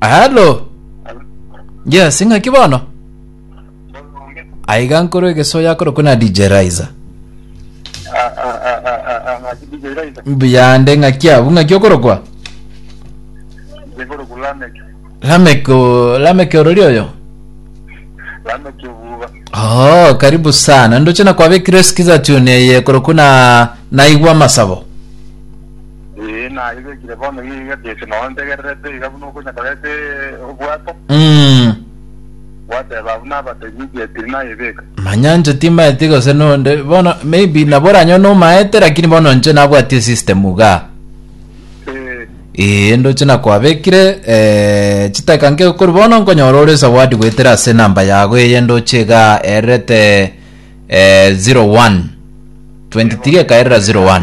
Hello. Yes, ng'aki bono? Aiga nkoro egesoya akorokwa na DJ Riser. Biyande ng'aki abu ng'aki okorokwa? Lamek o- Lamek orori oyo? Oh, karibu sana. Ndoche na kwabekire sikiza tune eye korokwa na naigwa masabo. Ee, naye begire bono iga Jesu nao ntegererete iga buna okonya koreta obwato, Mm. gwateba abwo nabatebia enchera tiri nayebeka. manya nche timaeti gose nonde bono maybe nabo oranyo nomaete lakini bono nche nabwati esystem iga Ee, ee ndoche nakwabekire eh, chitaka nke kori bono nkonyora ore zawadi goetera ase namba yago eye ndoche iga erete eh, 01 23 ekaerera 01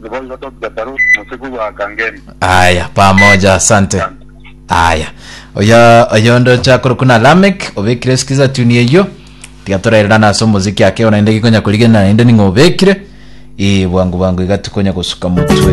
Boigo Doctor Baruch Musegugo Akangemi. Aya, pamoja, asante. Aya, oyo oyo ndocha korokwa na Lamek obekire sikiza tuni eyo tiga torerera nase omoziki ake ona inde gikonya korigena inde ning'o obekire ee bwangu bwangu iga tikonya gosuka motwe